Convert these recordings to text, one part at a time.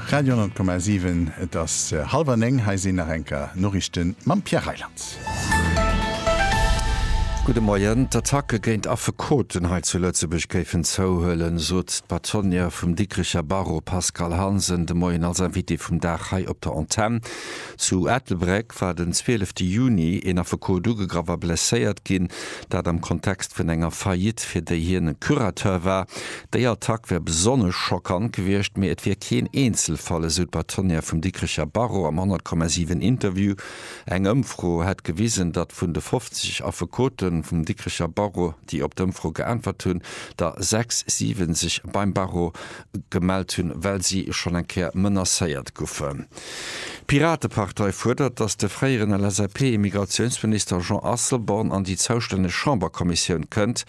Radio 10,7, Et ass hallwer néng, hei sinn nach eng Kéier Noriichte mam Pierre Reyland. Gudde Moien. D'Attacke géint Affekoten hei zu Lëtzebuerg géifen zouhuelen, sot d'Bâtonnière vum Dikricher Barreau Pascale Hansen de Moien als Invitée vum Dag hei op der Antenn. Zu Ettelbréck. war den 12 Juni een Affekot ugegraff a blesséiert ginn, dat am Kontext vun enger Faillite, fir déi hien e Curateur war. Déi Attack wär besonnesch schockant gewiescht, mee et wier keen Eenzelfall, esou d'Bâtonnière vum Dikricher Barreau am 100,7 Interview. Eng Ëmfro hätt gewisen, datt vun de 50 Affekote vum Dikricher Barreau, déi op d'Ëmfro geäntwert hunn, der sechs, siwe sech beim Barreau gemellt hunn, well si schonn eng Kéier menacéiert goufen. D'Piratepartei fuerdert, datt de fréieren LSAP-Immigratiounsminister Jean Asselborn an déi zoustänneg Chamberkommissioun kënnt,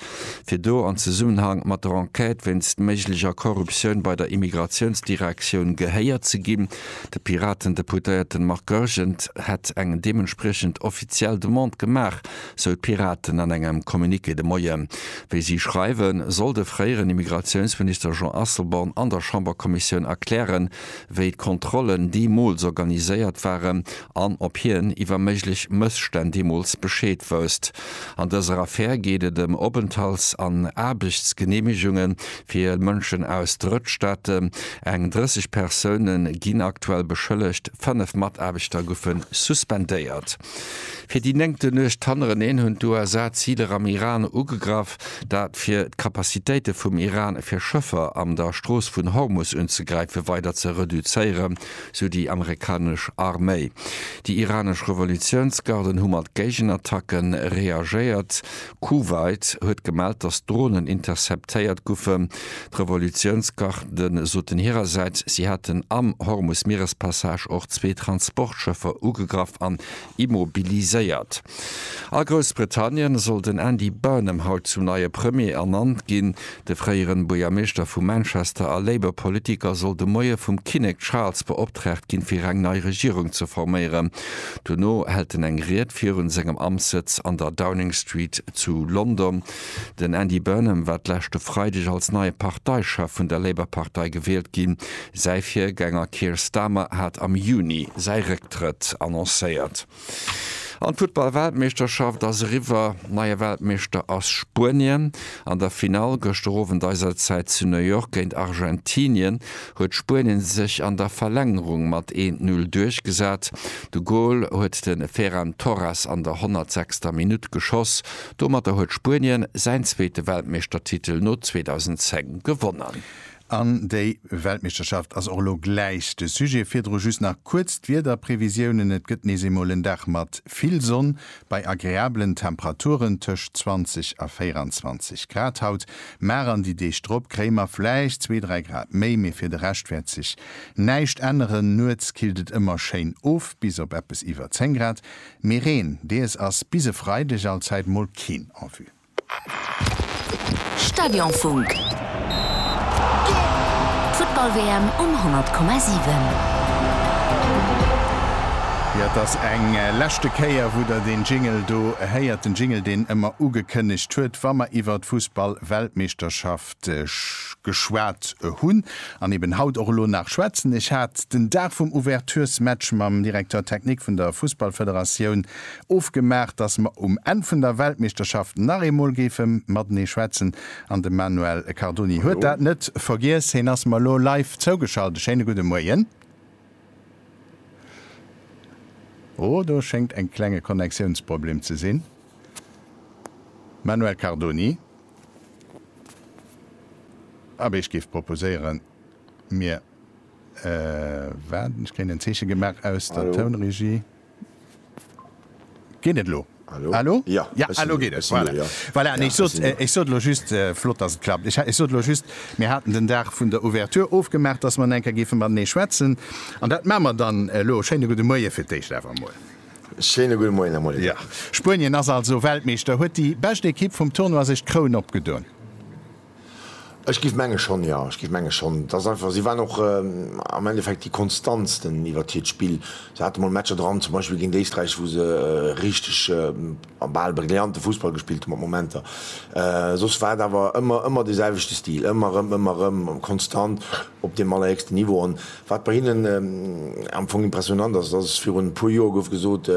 fir do an Zesummenhang mat der Enquête wéinst méiglecher Korruptioun bei der Immigratiounsdirektioun gehéiert ze ginn. De Piraten-Deputéierten Marc Goergen hätt eng deementspriechend offiziell Demande gemaach sou d'Piraten an engem Communiqué de Moien. Wéi si schreiwen, soll de fréieren Immigratiounsminister Jean Asselborn an der Chamberkommissioun erklären, wéi d'Kontrollen deemools organiséiert waren an ob hien iwwer méiglech Mësstänn deemools Bescheed wousst. An dëser Affär geet et ëm Openthalts an Aarbechtsgeneemegunge fir Mënschen aus Drëttstaate. Eng 30 Persoune ginn aktuell beschëllegt, fënnef Mataarbechter goufe suspendéiert. Fir déi néngte Nuecht hannereneen hunn d'USA Ziler am Iran ugegraff, dat fir d'Capacitéite vum Iran fir Schëffer an der Strooss vun Hormus unzegräife weider ze reduzéieren, sou déi amerikanesch Arméi. Déi iranesch Revolutiounsgarden hu mat Géigenattacken reagéiert, Kuwait huet gemellt, datt Dronen interceptéiert goufen. D'Revolutiounsgarde soten hirersäits, si hätten am Hormus-Mierespassage och zwee Transportschëffer ugegraff an immobiliséiert. A Groussbritannien soll den Andy Burnham haut zum neie Premier ernannt ginn. De fréieren Buergermeeschter vu Manchester a Labour Politiker soll de Moie vum Kinnek Charles beoptraagt ginn fir eng nei Regierung ze forméieren. Dono hält en eng Ried virun sengem Amtssëtz an der Downing Street zu London. Den Andy Burnham war d'leschte Freideg als neie Parteichef vun der Labour Partei gewielt ginn. Säi Virgänger Keir Starmer hat am Juni säi Récktrëtt annoncéiert. An d'Futtball-Weltmeeschterschaft ass eriwwer. Neie Weltmeeschter ass Spuenien. An der Finall, gëschter Owend eiser Zäit, zu New York géint Argentinien huet Spuenien sech an der Verlängerung mat 1-0 duerchgesat. De Gol huet de Ferran Torres an der 106. Minutt geschoss. Domatter huet Spuenien säin zweete Weltmeeschtertitel no 2010 gewonnen. An déi Weltmeeschterschaft ass och elo gläich de Sujet. Virdru just nach kuerz d'Wiederprevisiounen, Et gëtt nees eemol en Dag mat vill Sonn bei agreabelen Temperaturen tëscht 20 a 24 Grad haut. Mar an déi Deeg drop kréie mer vläicht zwee, dräi Grad méi, mee fir de Rescht wäert sech näischt änneren. Nuets killt et ëmmer schéin of bis op eppes iwwer 10 Grad, mee Reen dees ass bis e Freideg allzäit mol keen en vue. Stadionfunk. D'Futtball-WM um 100,7. Jo, et ass eng leschte Kéier, wou Der deen Jingle do héiert, den Jingle, deen ëmmer ugekënnegt huet, wa mer iwwer d'Fussball-Weltmeeschterschaft geschwat hunn an eben haut och elo nach schwätzen. Ech hat den Dag vum Ouvertures-Match mam Directeur technique vun der Fussballfederatioun ofgemaach, dass mer um Enn vun der Weltmeeschterschaft nach eemol géife matenee schwätzen an de Manuel Cardoni huet dat net vergiess. Heen ass mer elo live zougeschalt. E schéine gudde Moien. Oh, do schéngt en klenge Connectiounsproblem ze sinn. Manuel Cardoni, abee ech géif proposéieren, mir waarden. Ech kréien en Zeeche gemaach aus der Tounregie. Geet et elo? Hallo? Hallo? Jo, Ja, ech sinn elo do, geet ech et. sinn do, Voilà. jo. Voilà, nee, Ja, ech sot, ech sinn do. ech sot elo just, flott, dass et klappt. Ech ha, ech sot elo just, mir haten den Dag vun der Ouverture ofgemaach, dass mer elo eng Kéier géife matenee schwätzen. An dat maache mer dann elo. Schéine gudde Moie fir d'éischt awer emol. Schéine gudde Moien, Här Molliger. Ja, Spuenien ass also Weltmeeschter, huet déi bescht Ekipp vum Tournoi sech d'Kroun opgedoen? Ech giff menge schon, jo, ech giff menge schon. Et ass einfach, si waren och am Endeffekt déi konstantsten iwwert hiert Spill. Se hate mol Matcher dran, zum Beispill géint Éisträich, wou se richteg a bal brillante Fussball gespillt hu mat Momenter. Soss war et awer ëmmer, ëmmer dee selwechte Stil, ëmmer erëm, ëmmer erëm konstant op deem allerhéchsten Niveau. Wat bei hinnen am Fong impressionant ass, dat ass, virun e puer Joer gouf gesot,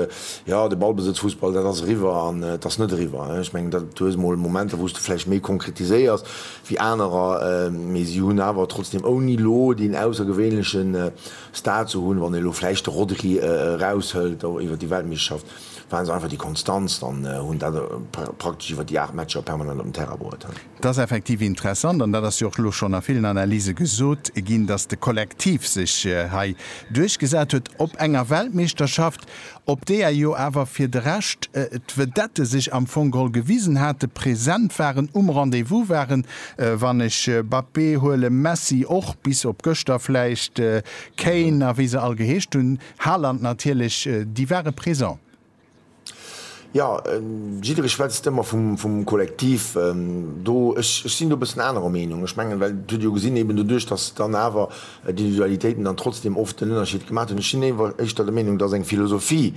jo de Ballbesëtzfussball, dat ass eriwwer an et ass net eriwwer. Ech mengen, dat du hues mol Momenter, wou s de vläicht méi konkretiséiers wéi anerer, mee si hunn awer trotzdeem, ouni elo deen aussergewéinleche Star ze hunn, wann ee elo vläicht de Rodri eraushëlt, och iwwer déi Weltmeeschterschaft ware se einfach déi Konstanz an hunn dat praktesch iwwer déi 8 Matcher permanent op den Terrain bruet. Et ass effektiv interessant, an dat ass jo och elo schonn a villen Analyse gesot ginn, datt de Kollektiv sech hei duerchgesat huet op enger Weltmeeschterschaft, op deeër jo awer fir de Rescht d'Vedette sech am Fong geholl gewisen hate, present waren, um Rendez-vous waren, wann ech Mbappé huelen, Messi och, bis op gëschter vläicht, Kane a wéi se all geheescht hunn, Haaland natierlech, déi ware présent. Jo, jidderee schwätzt ëmmer vum Kollektiv do. Ech sinn do e bëssen anerer Meenung. Ech mengen, well et hutt Dir jo gesinn, eben doduerch, datt dann awer d'Individualitéiten dann trotzdem oft den Ënnerscheed gemaach hunn. Ech sinn éiwer éischter der Meenung, datt eng Philosophie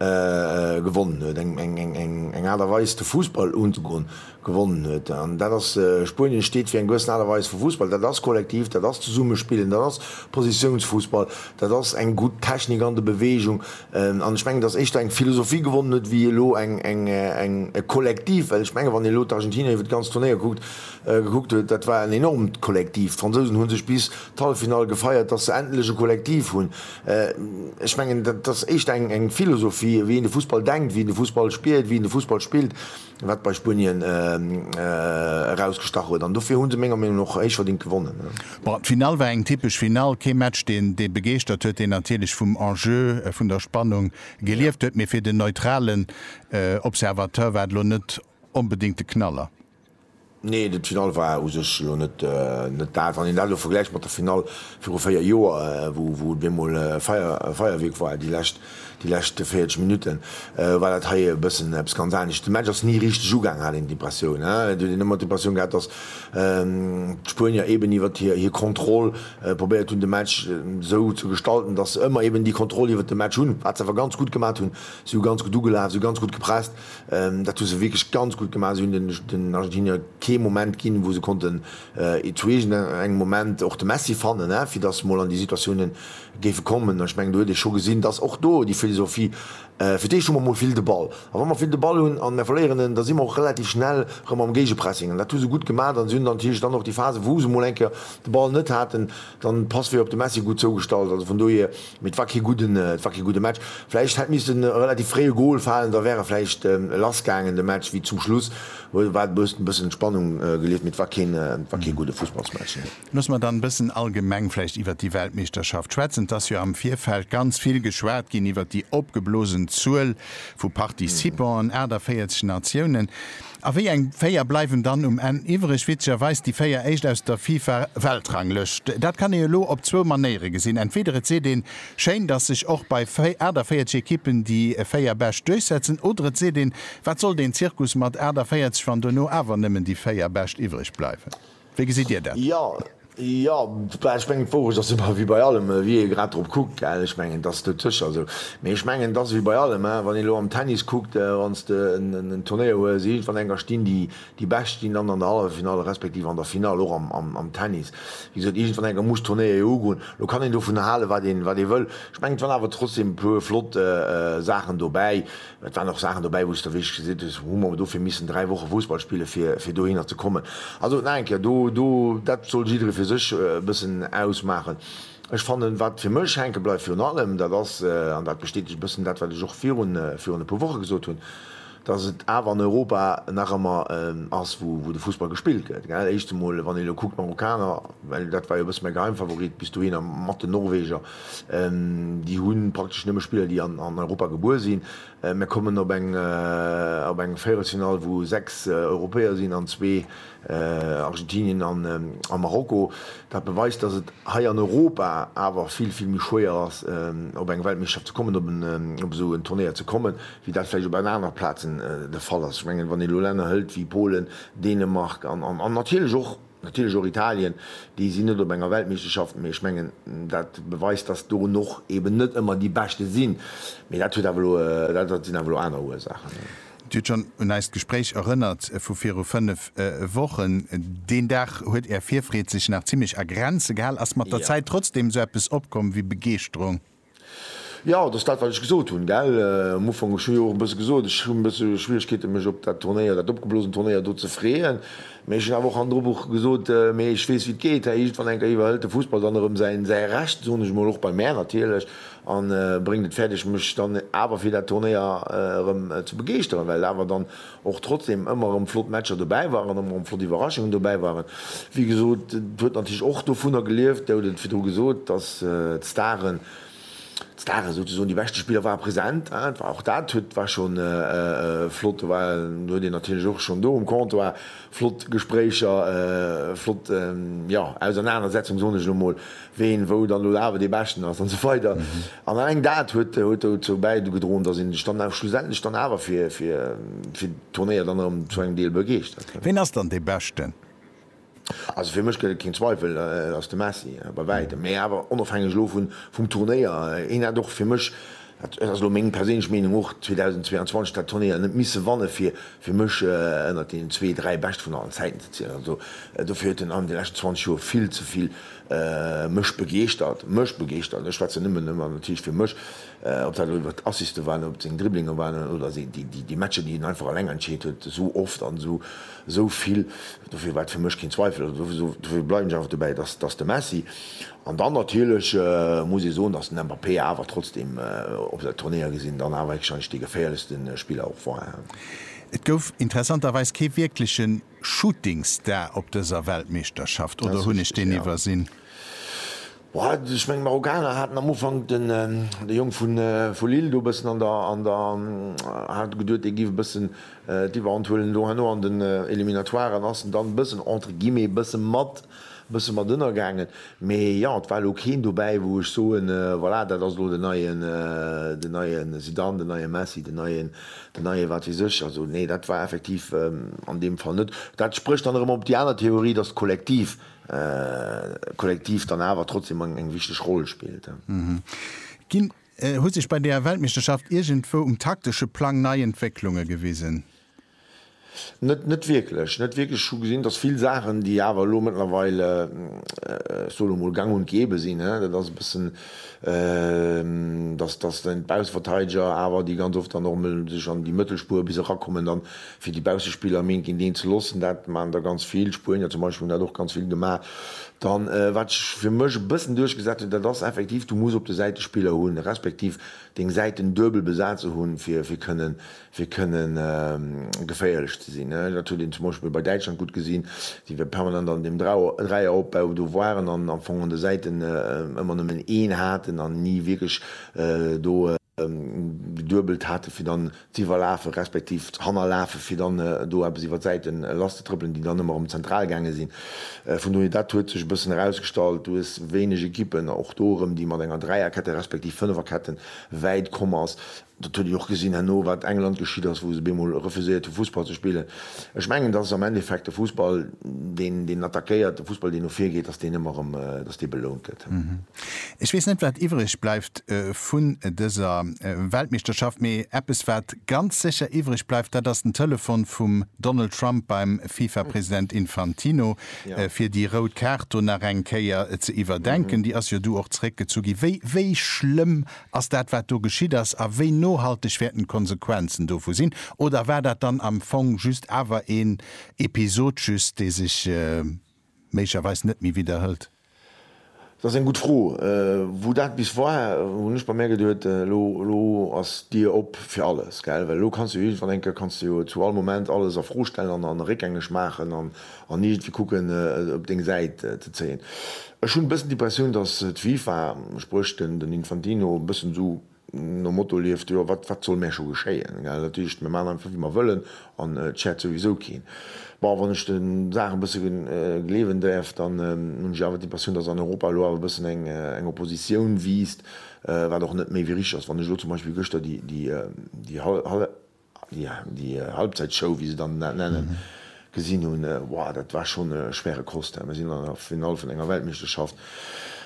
gewonnen huet, eng Aart a Weis de Fussball unzegoen, gewonnen huet. An dat ass, Spuenien steet fir eng gewëssen Aart a Weis vu Fussball. Dat ass kollektiv, dat ass Zesummespillen, dat ass Positiounsfussball, dat ass eng gutt Technik an der Beweegung. An ech mengen, datt éischter eng Philosophie gewonnen huet wéi elo eng, eng, e Kollektiv. Well ech mengen, wann een elo d'Argentinier iwwer d'ganzt Turnéier kuckt, gekuckt huet, dat war en enormt Kollektiv. D'Fransousen hu sech bis d'Halleffinall gefeiert, datt se endlech e Kollektiv hunn. Ech mengen, dat ass éischter eng, eng Philosophie, wéi een de Fussball denkt, wéi een de Fussball spiert, wéi een de Fussball spillt. wat bei Spuenien erausgestach huet an dofir hu se menger Meenung no och héich verdingt gewonnen. Bon, d'Finall war eng typesch Finall, kee Match deen dee begeeschtert huet, deen natierlech vum Enjeu, vun der Spannung gelieft huet, mee fir den neutralen Observateur war et elo net onbedéngt de Knaller. Nee, de d'Finall war u sech elo net net dat. Wann een dat elo vergläicht mat der Finall viru 4 Joer, wou wou et bemol Feier Feierwierk war, déi lescht déi lescht 40 Minutten, war dat hei e bëssen eppes ganz anescht. De Match ass ni richteg ugaang, hat een d'Impressioun. Et huet een ëmmer d'Impressioun gehat, datt d'Spuenier eben iwwert hir hir Kontroll probéiert hunn, de Match esou ze gestalten, datt se ëmmer eben déi Kontroll iwwert de Match hunn, wat se awer ganz gutt gemat hunn. Si hu ganz gutt ugelaf, si hu ganz gutt gepresst. Dat hu se wierklech ganz gutt gemaach. Se hunn den Argentinier kee Moment ginn, wou se konnten eezueegen. Engem Moment och de Messi fannen, fir datt se mol an déi Situatiounen géife kommen. An ech mengen, do huet ee scho gesinn, datt och do déi Philosophie, fir d'éischt hu mer mol vill de Ball. A wa mer vill de Ball hunn an mer verléieren en, da si mer och relativ schnell erëm am Géigepressing. An dat hu se gutt gemaach. A se hunn dann natierlech dann och déi Phase, wou se mol eng Kéier de Ball net haten, dann de Passwee op de Messi gutt zougestallt. Also vun dohier Mee et war kee gudden, et war kee gudde Match. Vläicht hätt misst e relativ fréie Gol falen, da wär e vläicht lass gaangen de Match, wéi zum Schluss huet war e bëssen d'Spannung gelieft, mee et war keen, et war kee gudde Fussballsmatch, nee. Loosse mer dann e bëssen allgemeng vläicht iwwert déi Weltmeeschterschaft schwätzen. Et ass jo am Virfeld ganz vill geschwat ginn iwwert déi opgeblosen Zuel vu Participanten, 48 Natiounen. A wéi eng véier bleiwen dann um Enn iwwreg? Witzegerweis déi véier éischt aus der FIFA-Weltranglëscht. Dat kann ee elo op zwou Manéiere gesinn, Entweeder et seet een, schéin, datt sech och bei 48 Ekippen déi véier Bescht duerchsetzen, oder et seet een, wat soll deen Zirkus mat 48, wann dono awer nëmmen déi véier Bescht iwwreg bleiwen? Wéi gesitt Dir dat? Jo, jo, ech mengen d'Wourecht ass ëmmer ewéi bei allem, wéi ee grad drop kuckt, gell. Ech mengen et ass dotëscher esou, mee ech mengen et ass ewéi bei allem, wann een elo am Tennis kuckt, wann s de en Turnéier hues, iergendwann enker stinn déi déi Bescht stinn dann an der Halleffinall respektiv an der Finall och am am am Tennis. Wéi gesot, iergendwann enker muss d'Turnéier jo ugoen. Lo kann een dovun hale wat een wat ee wëll. Ech mengen et waren awer trotzdem e puer flott Saachen dobäi, Et waren och Saachen dobäi, wou s de wierklech gesinn hues, Hu mer dofir missen dräi Woche Fussball spille fir dohinner ze kommen? Also nach eng Kéier, do, do, dat soll jidderee fir sech e bëssen ausmaachen. Ech fannen, wat fir mech hänke bleift virun allem, dat ass, an dat bestätegt e bëssen dat, wat ech och virun, virun e puer Woche gesot hunn, dass et awer an Europa nach ëmmer ass, wou, wou de Fussball gespillt gëtt. Gell, éischt emol, wann ee elo kuckt, d'Marokkaner, well dat war jo e bësse mäi Geheimfavorit bis dohinner, mat den Norweger, Déi hu praktesch nëmme Spiller, déi an Europa gebuer sinn. Mir kommen op eng Véierelsfinall, wou sechs Europäer sinn an zwee, Argentinien a Marokko. Dat beweist, datt et hei an Europa awer vill, vill méi schwéier ass, op eng Weltmeeschterschaft ze kommen, op esou en Turnéier ze kommen, wéi dat vläicht op an anere Plazen de Fall ass. Ech mengen, wann een elo Länner hëlt wéi Polen, Dänemark an natierlech och Natierlech och Italien, déi sinn net op enger Weltmeeschterschaft, mee ech mengen, dat beweist, dass do och eben net ëmmer déi Beschte sinn. Mee dat huet awer elo, dat sinn awer elo aner Ursaachen. Dir hutt schonn un eist Gespréich erënnert vu viru fënnef Wochen. Deen Dag huet Är Virfreed sech nach zimmlech a Grenze gehal. Ass mat der Zäit trotzdeem esou eppes opkomm wéi Begeeschterung? Jo, et ass dat, wat ech gesot hunn, gell. Am Ufank, ech hu jo och e bësse gesot, ech hunn e bësse Schwieregkeeten, mech op dat Turnéier, dat opgeblosen Turnéier do ze freeën. Mee ech hunn awer och hannendru Woche gesot, mee ech weess, wéi et geet. Hei iergendwann eng Kéier iwwerhëlt de Fussball dann erëm säi, säi Recht, soen ech emol, och bei mär natierlech, a bréngt et fäerdeg, mech dann awer fir dat Turnéier erëm ze begeeschteren, well et awer dann och trotzdem ëmmer erëm flott Matcher dobäi waren, ëmmer erëm flott Iwwerraschungen dobäi waren. Wéi gesot, et huet natierlech och dovunner gelieft, Der hutt et virdru gesot, dass d'Staren, d'Staren souzesoen, déi beschte Spiller ware present. Et war och dat huet, war schonn flott. Do war, do huet een natierlech och schonn do um Comptoir flott Gespréicher, flott, jo, Ausernanersetzung, soen ech elo mol. ween wou dann no der Aarbecht ee beschten ass an esou weider an alleng dat huet huet dozou bäigedroen, dass een sech dann awer schlussendlech dann awer fir fir fir d'Turnéier dann erëm zu engem Deel begeeschtert. Ween ass dann dee beschten? Also fir mech gëtt et keen Zweifel, et ass de Messi, bei wäitem, mä awer onofhängeg elo vun vum Turnéier, hien hat och fir mech Dat huet, ass elo meng perséinlech Meenung, och 2022 dat Turnéier net misse wanne fir fir mech ënnert deenen zwee, dräi Bescht vun allen Zäiten ze zielen. Also dofir huet en an de leschten 20 Joer vill ze vill mech begeeschtert, mech begeeschtert, ech schwätzen nëmmen ëmmer natierlech fir mech, ob dat elo iwwert d'Assiste waren, ob et seng Dribblinge waren oder déi déi Matcher, déi en einfach eleng entscheet huet, esou oft an esou esou vill. Dofir war et fir mech keen Zweifel, also dofir bleiwen ech einfach dobäi, et ass et ass de Messi. An dann natierlech muss ee soen, dass den Mbappé awer trotzdeem op esou Turnéier gesinn dann awer héchstwahrscheinlech dee geféierlechste Spiller och war. Et gouf interessanterweis kee wierkleche Shootingstar op dëser Weltmeeschterschaft, oder hunn ech deen iwwersinn? Ech mengen, d'Marokkaner haten am Ufank de Jong vu Lille do e bëssen an der, hat geduet, dee géif e bëssen d'Iwwerhand huelen. Elo herno an den Eliminatoiren ass en dann e bëssen entre guillemets e bësse mat e bësse mat ënnergaangen, mee jo, et war elo keen dobäi, wou ech soen, voilà, dat ass elo den neien, den neie Zidane, den neie Messi, den neien, den neie wat weess ech. Also nee, dat war effektiv an deem Fall net. Dat sprécht dann erëm op déi aner Theorie, dass d'Kollektiv, d'Kollektiv dann awer trotzdem eng wichteg Roll spillt. Ginn. Hu sech bei där Weltmeeschterschaft iergendwou um taktesche Plang nei Entwécklunge gewisen? Net, net wierklech. Net wierklech. Ech hu gesinn, dass vill Saachen, déi awer elo mëttlerweil, ech soen emol, gang und gäbe sinn, hä, dat ass e bëssen, dass, dass dann d'Baussverteideger awer, déi ganz oft dann och emol sech an déi Mëttelspur bis erakommen, dann fir déi Baussespiller am Hinking deen ze loossen. Dat maachen der ganz vill. D'Spuenier zum Beispill hunn dat och ganz vill gemaach. Dann, wat sech fir mech e bëssen duerchgesat huet, dat ass effektiv, du muss op de Säite Spiller hunn, respektiv deng Säiten duebel besaze hunn, fir, fir kënnen, fir kënne geféierlech ze sinn. Dat huet een zum Beispill bei Däitschland gutt gesinn, déi jo permanent an deem Dreieropbau do waren an am Fong un de Säiten ëmmer nëmmen een haten an ni wierklech do geduebelt haten, fir dann z'iwwerlafen, respektiv hannerlafen, fir dann do eppes iwwer d'Säiten lasszetrëppelen, déi dann ëmmer erëm zentral gaange sinn. Vun dohier, dat huet sech e bëssen erausgestallt. Du hues wéineg Ekippen, och do erëm, déi mat enger Dräierkette, respektiv Fënneferkette wäit komm ass. Dat huet ee jo och gesinn herno, wat England geschitt ass, wou se op eemol refuséiert hu Fussball ze spillen. Ech mengen, dass am Endeffekt de Fussball, deen, deen attackéiert, de Fussball, deen no vir geet, dass deen ëmmer erëm, dass dee belount gëtt. Ech weess net, wat iwwreg bleift vun dëser Weltmeeschterschaft, mee eppes, wat ganz sécher iwwreg bleift, dat ass den Telefon vum Donald Trump beim FIFA-President Infantino, fir déi rout Kaart do nach eng Kéier ze iwwerdenken. Déi ass jo du och zeréckgezu ginn. Wéi, wéi schlëmm Ass dat wat do geschitt ass a wéi nohalteg wäerten d'Konsequenzen dovu sinn oder war dat dann am Fong just awer een Episod just, dee sech méiglecherweis net méi widderhëlt? Dat ass eng gutt Fro. Wou dat bis war, hunn ech bei mär geduet, elo elo ass d'Dier op fir alles, gell, well elo kanns de jo iergendwann eng Kéier kanns de jo zu all Moment alles a Fro stellen an a réckgängeg maachen an an iergendwéi kucken et op deng Säit ze zéien. Ech hunn e bëssen d'Impressioun, datt d'FIFA, spréch den Infantino, e bëssen esou nom Motto lieft, jo wat wat soll mär scho geschéien, gell, dat heescht mir maachen einfach wéi mer wëllen an et schäert souwisou keen. Bon, wann ech de Saache e bësse gleewen däerf, dann hunn ech awer d'Impressioun, datt an Europa elo awer e bëssen eng Oppositioun wiisst, wat och net méi wéi richteg ass. Wann ech elo zum Beispill gëschter déi Déi Halbzäitshow, wéi se dann dat nennen, gesinn hunn, wow, dat war schonn e schwere Kost. Mir sinn an der Finall vun enger Weltmeeschterschaft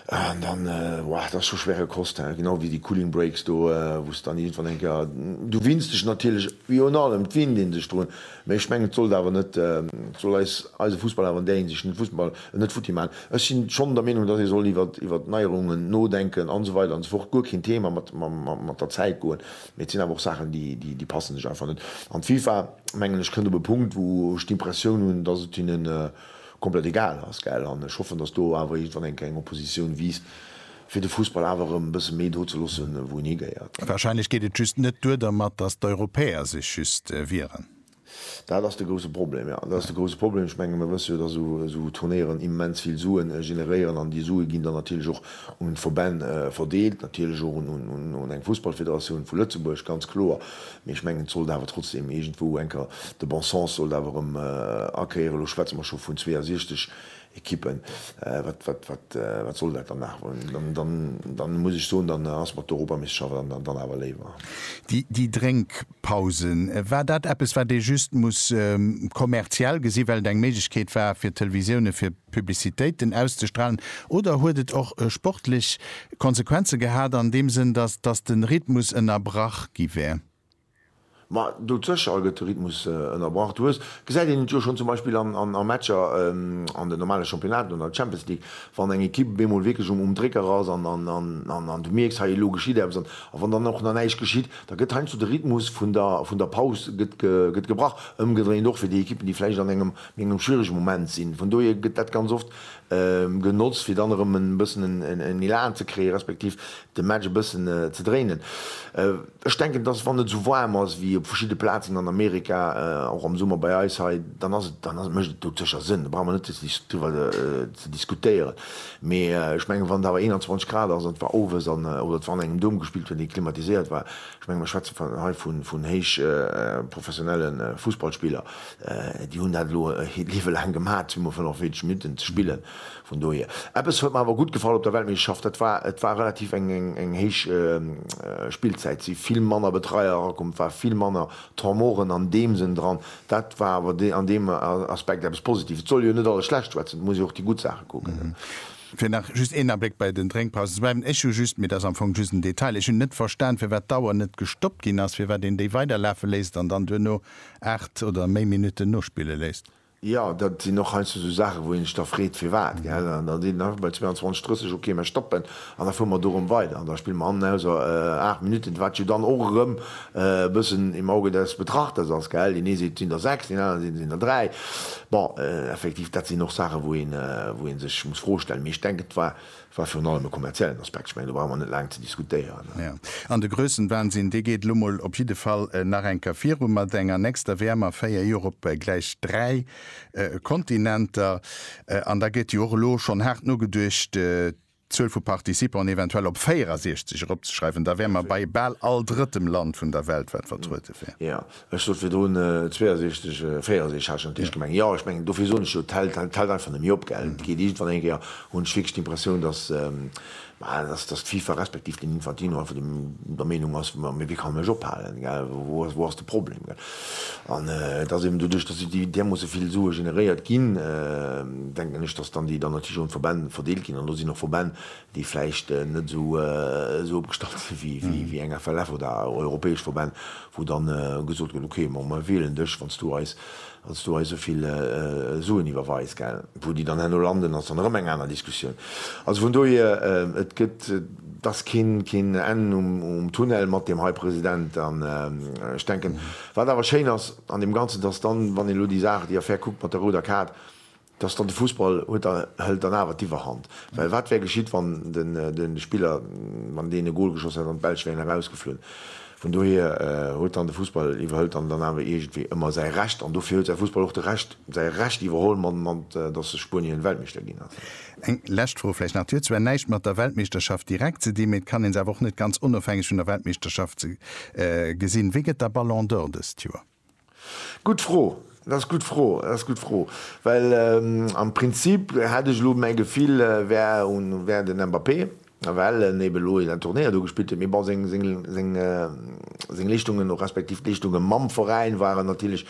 an dann, wow, dat ass scho schwere Kost. Genau wéi déi Cooling Breaks do, wou s de dann iergendwann eng Kéier, du winns dech natierlech, wéi un allem, et winnt ee sech drun, mä ech mengen, et sollt awer net, et soll eis, eise Fussball awer an där Hinsicht, den Fussball net futti maachen. Ech si schonn der Meenung, datt ee soll iwwert, iwwert Neierungen nodenken an esou weider an esou fort, guer keen Thema, mat, mat der Zäit goen. Mee et sinn awer och Saachen, déi passen sech einfach net. An d'FIFA, mengen ech, kënnt op e Punkt, wou ech d'Impressioun hunn, datt et hinnen komplett egal ass. Gell? An ech hoffen, datt do awer iergendwann eng kleng Oppositioun wiisst, fir de Fussball awer erëm e bësse méi do ze loossen, wou en higehéiert. Wahrscheinlech geet et just net duer dermat, datt d'Europäer sech just wieren. Dat ass de grouse Problem, jo. Dat ass de grouse Problem. Ech menge mir wësse jo, datt esou Turnéieren immens vill Sue generéieren an déi Sue ginn dann natierlech och un d'Verbänn verdeelt, natierlech och un eng Fussballfederatioun vu Lëtzebuerg, ganz kloer. Mee ech mengen, et sollt awer trotzdeem iergendwou enker de bon sens sollt awer erëm akéieren. Elo schwätze mer scho vun 62 Equippen. Wat soll dat dann nach? Dann muss ech soen, dann ass mer d'Europameeschterschaft dann awer léiwer. Déi Drénkpausen, war dat eppes, wat ee just muss kommerziell gesinn, well et eng Méiglechkeet war fir d'Televisioune fir Publicitéiten auszestralen, oder huet et och sportlech Konsequenze gehat an deem Sënn, datt de Rhythmus ënnerbrach gi wär? Ma dozëscher gëtt de Rhythmus ënnerbrach. Du hues, gesäit een et jo schonn zum Beispill an a Matcher an den normale Championnaten oder an der Champions League, wann eng Ekipp op eemol wierklech um Drécker ass an du mierks, hei elo geschitt eppes an a wann dann och nach näischt geschitt, da gëtt heiansdo de Rhythmus vun der vun der Paus gëtt gebrach. Ëmgedréint och fir déi Ekippen, déi vläicht an engem méi engem schwierege Moment sinn. Vun dohier gëtt dat ganz oft genotzt, fir dann erëm e bëssen en Elan ze kréie respektiv de Match e bëssen ze dréinen. Ech denken, dass, wann et esou waarm ass wéi op verschidde Plazen an Amerika, och am Summer bei eis hei, dann ass et, dann mécht et doutsécher Sënn, do brauche mer net driwwer ze diskutéieren. Mee ech mengen, wann et awer 21 Grad ass an et war owes an, oder et war an engem Doum gespillt huet, dee klimatiséiert war, ech menge mer schwätze hei vun héichprofessionelle Fussballspiller, déi hunn dat elo e Liewe laang gemaach, zwee mol 45 Minutten ze spillen, Vun dohier, eppes huet mer awer gutt gefall op der Weltmeeschterschaft, dat war, et war relativ eng, eng héich Spillzäit. Et si vill manner Betreier erakomm, et war vill manner Tormoren an deem Sënn dran. Dat war awer an deem Aspekt eppes Positives. Et soll jo net alles schlecht schwätzen, et muss ee jo och déi gutt Saache kucken. Fir nach just een Abléck bei den Drénkpausen ze bleiwen, ech hu just, mee dat ass am Fong just en Detail, ech hunn net verstan, firwat d'Auer net gestoppt ginn ass, firwat een déi weiderlafe léisst an dann duerno aacht oder méi Minutten nospille léisst. Jo, dat sinn och heiansdo esou Saachen, wou ee sech da freet, firwat, gell? An da seet een einfach bei 22, 30, okay, mä stoppen an da fuere mer do erëm weider an da spille mer hannen aus aacht Minutten, wat jo dann och erëm e bëssen im Auge des Betrachters ass, gell? Deen ee seet, et sinn der sechs, deen aneren seet, et sinn der dräi. Bon, effektiv, dat sinn och Saachen, wou ee sech muss d'Fro stellen. Mee ech denken, et war War virun allem e kommerziellen Aspekt, ech mengen do brauche mer net laang ze diskutéieren. Jo, an de Grössenwahnsinn, dee geet elo mol op jidde Fall nach eng Kéier viru mat enger nächster WM a véier Joer op gläich dräi Kontinenter. An da gëtt jo och elo schonn haart nogeduecht, d'Zuel vu Participanten eventuell op 64 eropzeschreiwen. Da wäre mer bei bal all drëttem Land vun der Welt, wat vertruede wär. Jo, Ech sot virdrun 62, 64 hat ech an d'Eischt gemengt. Jo, ech mengen, dofir soen ech jo, et hält einfach net méi op, gell. Et geet iergendwann eng Kéier, hunn ech wierklech d'Impressioun, dass, bah, dass d'FIFA respektiv den Infantino einfach der Meenung ass, ma wéi kann en mech ophalen, gell, wou ass, wou ass de Problem, gell. An et ass eben doduerch, dass déi därmoosse vill Sue generéiert ginn, denken ech, dass dann déi dann natierlech un d'Verbänn verdeelt ginn. An do sinn och Verbänn, déi vläicht net esou opgestallt sinn wéi eng FLF oder europäesch Verbänn, wou dann gesot gëtt, ok, ma mir wielen dech, wann s du eis esou vill Suen iwwerweis. Wou déi dann herno landen, ass dann erëm eng aner Diskussioun. Also vun dohier, et gëtt, et ass keen Enn um Tunnel mat deem hei President. An ech denken, wat awer schéin ass an deem Ganzen, dass dann, wann een elo déi Saach, déi Affär kuckt mat der rouder Kaart, Dass dann de Fussball huet, da hëlt dann awer d'Iwwerhand. Well wat wär geschitt, wann de Spiller, wann deen e Gol geschoss hätt an d'Belsch wären erausgeflunn? Vun dohier huet dann de Fussball, iwwerhëlt dann dann awer iergendwéi ëmmer säi Recht. An dofir huet säi Fussball och de Recht, säi Recht iwwerholl, mat dass sech Spuenien Weltmeeschter ginn ass. Eng lescht Fro vläicht nach, Déi huet zwar näischt mat der Weltmeeschterschaft direkt ze dinn, mee et kann ee se awer och net ganz onofhängeg vun der Weltmeeschterschaft gesinn. Wee gëtt da Ballon d'Or dëst Joer? Gutt Fro, dat ass gutt Fro, dat ass gutt Fro, well am Prinzip hätt ech elo mäi Gefill wär un wär den Mbappé, well en ebe elo en Turnéier do gespillt huet, mee bon seng seng seng seng Leeschtungen och respektiv d'Leeschtungen mam Veräin waren natierlech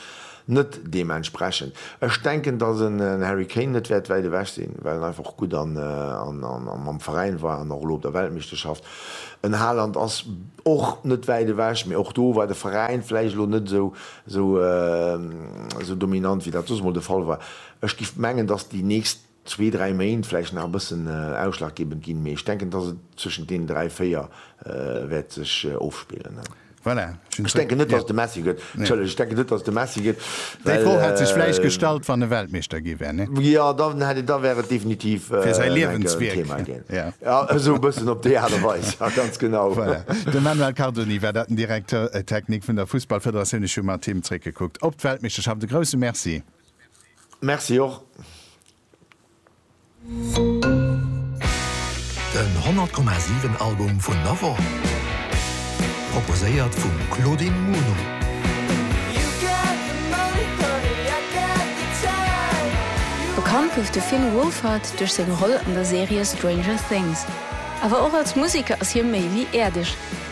net deementsprechend. Ech denken, datt en Harry Kane net wäert wäit ewech sinn, well en einfach gutt an an an mam Veräin war an och elo op der Weltmeeschterschaft En Haaland ass och net wäit ewech, mee och do war de Veräin vläicht elo net esou dominant, wéi dat soss emol de Fall war. Ech géif mengen, dass déi nächst zwee, dräi Méint vläicht nach e bëssen ausschlaggebend ginn, mee ech denken, dass et zwëschent deenen dräi, véier wäert sech ofspillen. Voilà, ech hunn zwee, ja. Ech denken net, dass et de Messi gëtt. Entschëllegt, ech denken net, dass et de Messi gëtt, well. Déi Fro hätt sech vläicht gestallt, wann e Weltmeeschter gi wär, ne? Jo, dann hätt et, da wär et definitiv Fir säi en Liewenswierk. Thema ginn. Ja. Ja, esou e bëssen op déi Aart a Weis, ja, ganz genau. Voilà. De Manuel Cardoni war dat, den Directeur technique vun der Fussballfederatioun. Ech hu mat him zréckgekuckt op d'Weltmeeschterschaft. E grousse Merci. Merci och. Den 100,7 Album vun der Woch, proposéiert vum Claudine Muno. Bekannt gouf de Finn Wolfhard duerch seng Roll an der Serie Stranger Things. Awer och als Museker ass hie méi wéi äerdeg.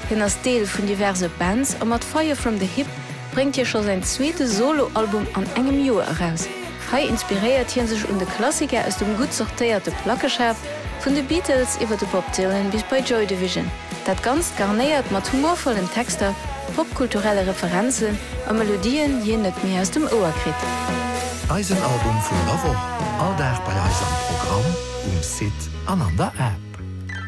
Hien ass Deel vun diverse Bands a mat Fire From The Hip bréngt hie scho säin zweete Solo-Album an engem Joer eraus. Hei inspiréiert hie sech un de Klassiker aus dem gutt sortéierte Plackeschaf, vun de Beatles iwwer de Bob Dylan bis bei Joy Division. Dat Ganzt garnéiert mat humorvollen Texter, popkulturelle Referenzen a Melodien, déi een net méi aus dem Ouer kritt. Eisen Album vun der Woch, all Dag bei eis am Programm, um Site an an der App.